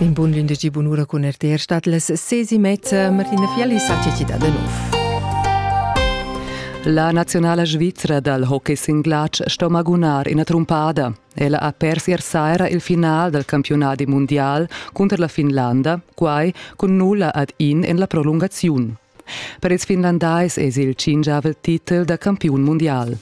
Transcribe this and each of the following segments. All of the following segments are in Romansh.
In bun glindegi bunura cun RTR stat las sesi mezza Martina Fielli sa da nov. La nazionala svizra dal hockey singlatsch sto magunar ina trumpada. Ella ha pers ier saira il final dal campionat mundial cunter la Finlanda, quai cun nulla ad in en la prolungaziun. Per ils finlandais es il cingiavel titel da campiun mundial.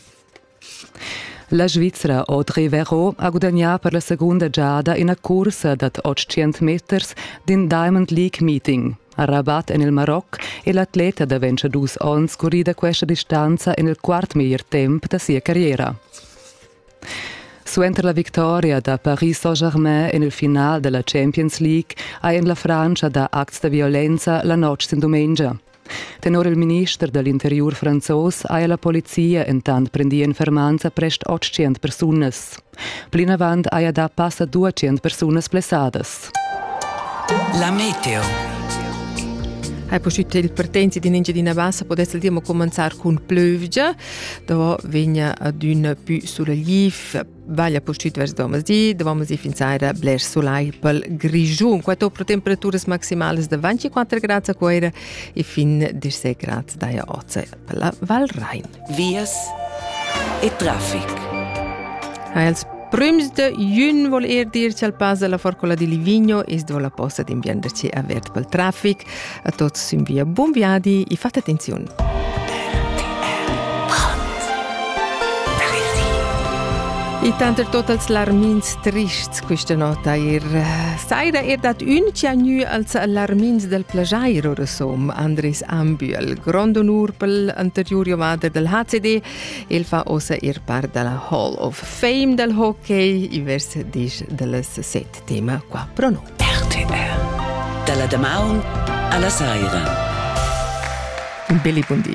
La Svizra Audrey Verot ha gudagnà per la segunda giada ina cursa dad 800 meters d'in Diamond League meeting. A Rabat en il Maroc è l'atleta da 22 onns currida questa distanza en il quart meglier temp da sia carriera. Suenter la victoria da Paris Saint-Germain en il final da la Champions League ha en la Frantscha da acts da violenza la notg sin dumengia. Tenor il minister da l'interiur franzos haja la polizia entant prendì en fermanza prest 800 persunas. Plinavant haja dà passa 200 persunas blessadas. La meteo. Hai posciuto il partenza di Engiadina Bassa potesse dire commenzare con pleugia, dove vegna ad un più sulla GIF Vaglia pustit vers domezi, domezi finzaira blers sulai pel Grischun. Quato pro temperaturas maximalas de 24 grads a Cuera e fin 16 grads daja oce per la Val Rhein. Vias e traffic. Ha els prüms de jun vol er dir chal pasa la forcola di Livigno is do la posta d'imbienderci avert pel traffic. A tuots ün via bun viadi e fate attenziun! E tanter totals larmins trists quista nota eir saira er dat ün chiagnü als larmins del plagiair ora som Andres Ambühl. Grond onur pel anteriur ovader del HCD, el fa ossa er part della Hall of Fame del hockey i vers disch dellas set. tema qua pro noi. RTR. Dalla damaun alla saira. Un belli buon di.